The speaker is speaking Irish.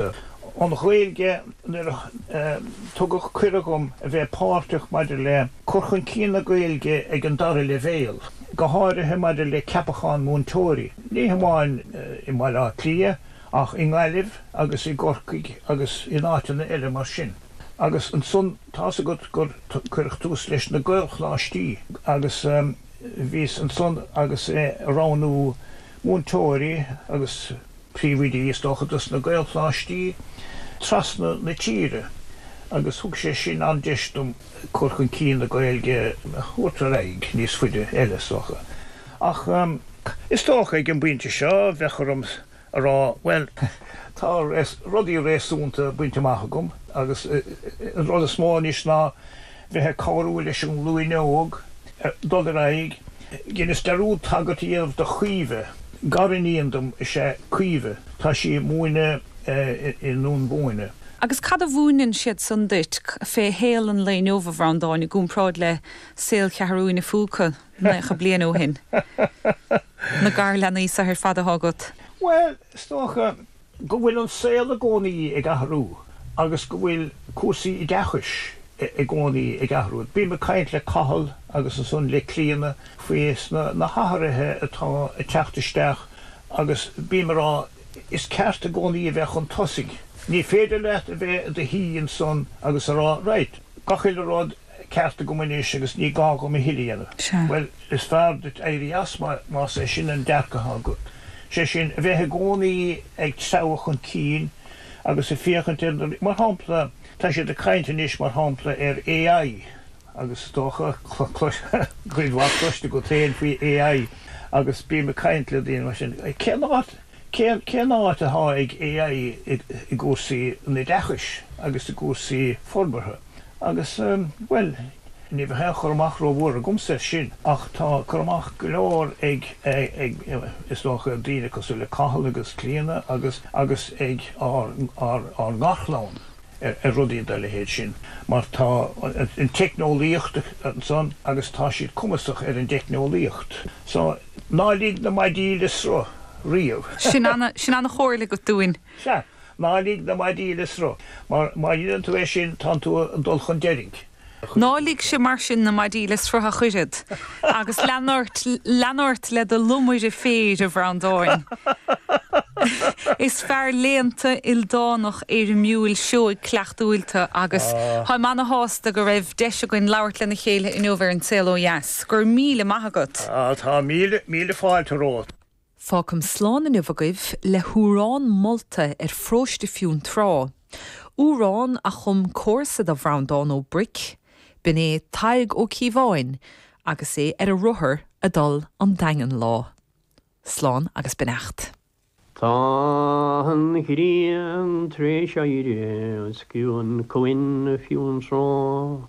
An Ghaeilge Nuair a tugadh cuireadh dom a bheith páirteach maidir le cur chun cinn na Gaeilge ag an dara leibhéal, go háirithe maidir le ceapacháin múinteoirí, ní hamháin i mBaile Átha Cliath ach i nGaillimh agus i gCorcaigh agus in áiteanna eile mar sin, agus ansan tá's agat gur cuireadh tús leis na Gaelcholáistí agus bhíos ansan agus ag roghnú múinteoirí agus. príomhoidí is dócha dos na Gaelcholáistí trasna na tíre agus thug sé sin an-deis dom cur chun cinn na Gaeilge a thabhairt ar aghaidh níos faide eile is dócha. Ach is dócha ag an bpointe seo bheadh orm a rá bhuel, tá rudaí réasúnta bainte amach agam agus an rud is mó anois ná bheith ag cabhrú leis an nglúin óg dul ar aghaidh. Dheinis dearúd tagairt a dhéanamh do Chaoimhe, gariníon dom is ea Caoimhe, tá sí ag múineadh i nDún Bóinne. Agus cad a mhúineann siad san duit féinig fé shaol an lae inniu, a Bhreandáin, i gcomparáid le saol Cheathrú a Phúca naocha bliain ó shin? Na garleanaí so ar fad athá agat? Bhuel, is dócha go bhfuil an saol i gcónaí ag athrú agus go bhfuil cúrsaí oideachais i gcónaí ag athrú. Bím ag caint le Cathal agus ansan le Clíona faoi na hathruithe atá ag teacht isteach agus bím ag rá Is ceart i gcónaí a bheith chun tosaigh. Ní féidir leat a bheith i do shuí ansan agus a rá Raight, gach uile rud ceart agam anois agus ní gá dhom a thuilleadh a dhéanamh. Bhuel, is fearr duit éirí as, más é sin an dearcadh atá agat. Sé sin, a bheith i gcónaí ag treabhadh chun cinn agus ag féachaint ar na, mar shampla, tá siad ag caint anois, mar shampla, ar AI agus is dócha, cuid mhaith cloiste agat féin faoi AI agus bím ag caint le daoine mar sin. Cén áit, cén áit atá ag AI i gcúrsaí oideachais agus i gcúrsaí forbartha? Agus, bhuel, ní bheadh aon chur amach rómhór agamsa air sin, ach tá cur amach go leor ag, is dócha, daoine cosúil le Cathal agus Clíona agus, agus ag ár, ár, ár ngarchlann ar, ar rudaí dá leithéid sin. Mar tá an teicneolaíocht ansan agus tá siad cumasach ar an dteicneolaíocht. So, ná lig na maidí le sruth riamh. Sin ana, sin ana-chomhairle agat dúinn. Sea, ná lig na maidí le sruth, mar má dheineann tú é sin, tánn tú ag dul chun deiridh. Ná ligse mar sin na maidí le sruth ach oiread, agus lean ort, lean ort le do lomaire féir, a Bhreandáin. Is fear léannta, ildánach, éirimiúil, seoigh, cuideachtúil tu, agus táim ana-shásta go raibh deis againn labhairt lena chéile inniu ar An Saol Ó Dheas. Go raibh míle maith agat. Tá míle, míle fáilte romhat. Fágaim slán inniu agaibh le hamhrán molta ar pharóiste Fionntrá, amhrán a chum comharsa do Bhreandán Ó Bric, b'in é Tadhg Ó Ciabháin agus é ar a rothar ag dul 'on Daingean lá. Slán agus beannacht. Tá an ghrian tar éis éirí os cionn Cuan Fionntrá.